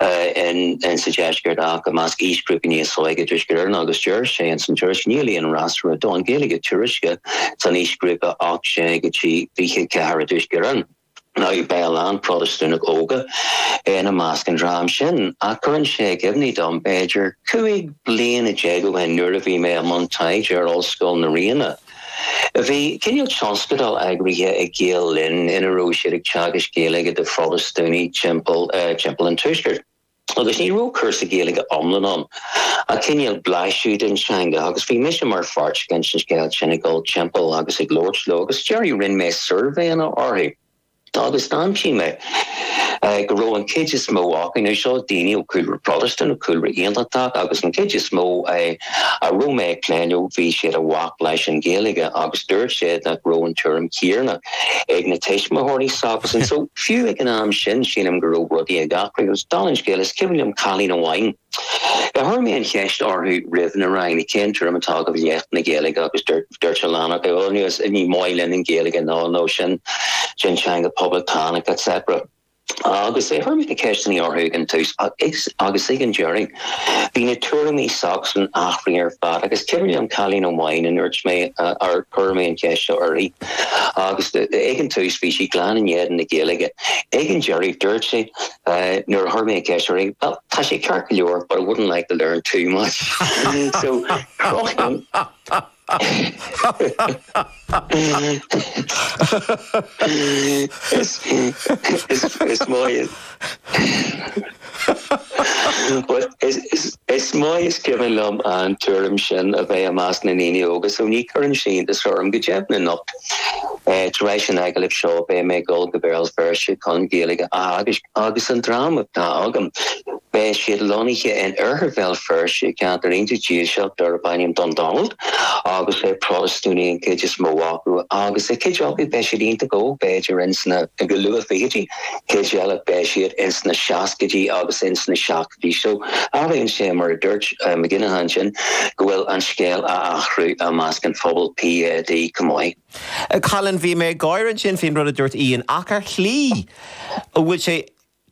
in sa Deisceart ach i measc aoisghrúpaí níos óige i dTuaisceart Éireann agus deir sé ins an tuairisc níl aon fhreasúra don Ghaeilge tuairisce san aoisghrúpa 18 go dtí 24 i dTuaisceart Éireann nó beidh a lán Protastúnaigh óga ina measc an dream sin. Ach cuireann sé i gcuimhne dom, b'fhéidir, 15 bliain ó shin nuair a bhí mé i mbun taighde ar Ollscoil na Ríona, Bhí cineál tionscadal eagraithe ag Gael Linn ina raibh siad ag teagasc Gaeilge do Phrotastúnaigh timpeall timpeall an Tuaiscirt agus ní raibh cúrsa Gaeilge iomlán ann ach cineál blaiseadh den teanga agus bhí mise mar pháirt den scéim sin ag dul timpeall agus ag labhairt leo agus ag an deireadh rinne mé suirbhéanna orthu. Agus d'aimsigh mé go raibh an chuid is mó acu, nó seo daoine ó chúlra Protestant, ó chúlra Aontachtach, agus an chuid is mó a raibh mé ag plé leofa, bhí siad i bhfách leis an Ghaeilge agus dúirt siad nach raibh an tuairim chéanna ag na tuismitheoirí s'acusan. So, fiú ag an am sin, sílim go raibh rudaí ag athrú. Agus dála an scéil, is cuimhin liom cailín amháin, Chuir mé an cheist orthu roimh na ranganna, cén tuairim atá agaibh i leith na Gaeilge agus dúirt a lán acu, bhuel, ní maith linn an Ghaeilge nó nó sin teanga poblachtánach etc. Agus chuir mé na ceisteanna orthu ag an tús agus ag an deireadh, bhí na tuairimí s'acusan athraithe ar fad agus is cuimhin liom cailín amháin a ndúirt mé ar chuir mé an cheist seo uirthi agus ag an tús bhí sí glan in éadan na Gaeilge, ag an deireadh dúirt sí. Nuair a chuir mé an cheist uirthi, bhuel, tá sé ceart go leor, but I wouldn't like to learn too much. So, crochann. Is maith is. But is maith is cuimhin liom an tuairim sin a bheith i measc na ndaoine óga, so ní chuireann sin iontas orm go deimhin anocht. Tar éis an agallamh seo beidh mé ag dul go Béal Feirste chun Gaeilge a theagasc agus an dream atá agam beidh siad lonnaithe in Oirthear Bhéal Feirste i gceantar iontach dílseach darb ainm Dundonald agus Protastúnaigh an chuid is mó acu agus cuid acu beidh siad iontach óg b'fhéidir ins na luath-fhichidí, cuid eile beidh siad ins na seascaidí agus ins na seo. Admhaíonn sé, mar a dúirt Mac Aonghusa ansin, go bhfuil an scéal ag athrú i measc an phobail PUL chomh maith. Colin, Bhí mé ag gáire ansin faoin rud a dúirt Ian, ach ar shlí an bhfuil sé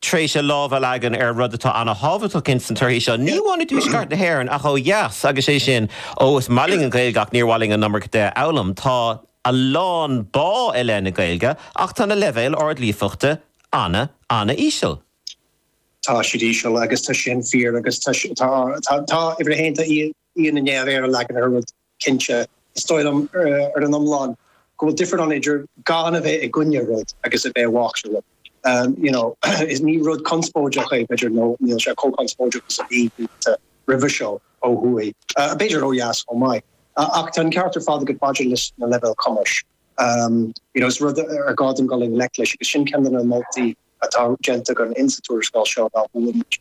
tar éis a lámh a leagan ar rud atá an-tábhachtach ins na torthaí seo, ní amháin i dTuaisceart na hÉireann ach ó dheas, agus sé sin, ó, is maith linn an Ghaeilge ach níor mhaith linn an iomarca di a fhoghlaim. Tá a lán bá i leith na Gaeilge ach tá na leibhéil ard-líofachta ana, ana-íseal. Tá siad íseal agus tá sin fíor agus tá tá uimhir a haon tá Ian i ndiaidh a mhéar a leagan ar an rud cinnte. Is dóigh liom ar an iomlán go bhfuil difear ann idir gan a bheith i gcoinne rud agus a bheith i bhfách le rud. you know is ní rud conspóideach é b'fhéidir nó níl sé chomh conspóideach is a bhí blianta roimhe seo ó thuaidh, b'fhéidir ó dheas chomh maith. Ach tá an ceart ar fad agat maidir leis na leibhéil cumais. you know is rud ar gá dúinn dul i ngleic leis agus sin ceann de na moltaí atá déanta againn insa tuarascáil seo ná go bhfuil muid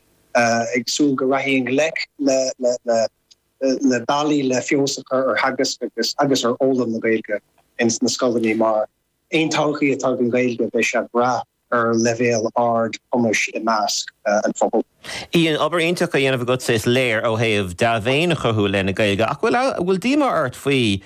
ag súil go rachfaí i ngleic le bealaí le feabhas a chur ar theagasc agus agus ar fhoghlaim na Gaeilge ins na scoileanna. Mar aon todhchaí atá ag an Ghaeilge, beidh sé ag brath ar leibhéal ard cumais i measc an phobail. Ian, obair iontach á dhéanamh agatsa is léir ó thaobh dea-mhéin a chothú i leith na Gaeilge ach bhfuil díomá ort faoi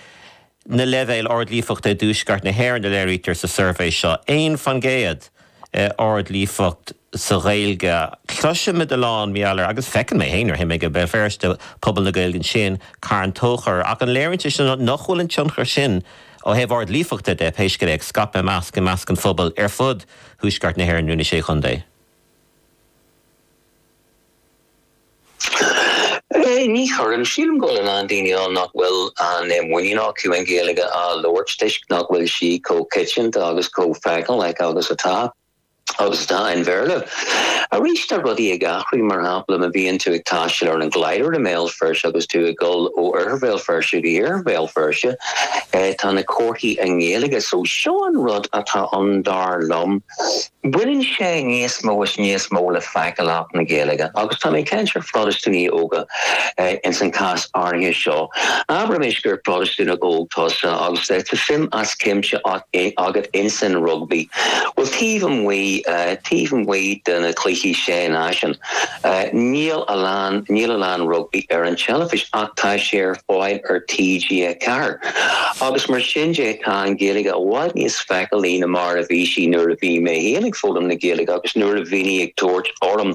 na leibhéil ard-líofachta i dTuaisceart na hÉireann a léirítear sa suirbhé seo, 1 faoin gcéad ard-líofacht sa Ghaeilge. Cloisimid a lán mar gheall air, agus feiceann mé féin nuair a théim go Béal Feirste, pobal na Gaeilge ansin, Carn Tóchair, ach an léiríonn sé sin nach bhfuil an tionchar sin, ó thaobh ard-líofachta de, pé scéal é, ag scaipeadh i measc an phobail ar fud Thuaisceart na hÉireann nó na Sé Chontae? Ní chuireann. Sílim go bhfuil a lán daoine ann nach bhfuil an muinín acu an Ghaeilge a labhairt toisc nach bhfuil sí chomh coitianta agus chomh feiceálach agus atá. Agus atá an Bhéarla. Arís, tá rudaí ag athrú. Mar shampla, má bhíonn tú ag taisteal ar an Glider i mBéal Feirste agus tú ag dul ó Oirthear Bhéal Feirste go hIarthar Bhéal Feirste, tá na comharthaí i nGaeilge. So, seo an rud atá ann, dar liom. Baineann sé níos mó is níos mó le feiceálacht na Gaeilge agus tá mé ag caint ar Phrotastúnaigh óga ins an cás áirithe seo. Abraimis gur Protastúnach óg tusa agus tá suim as cuimse agat ins an rugbaí. Bhuel, taobh amuigh, taobh amuigh de na cluichí Sé Náisiún, níl a lán, níl a lán rugbaí ar an teilifís ach tá sé ar fáil ar TG4 agus mar sin de tá an Ghaeilge i bhfad níos feiceálaí ná mar a bhí sí nuair a bhí mé féin ag foghlaim na Gaeilge agus nuair a bhínn ag tabhairt orm.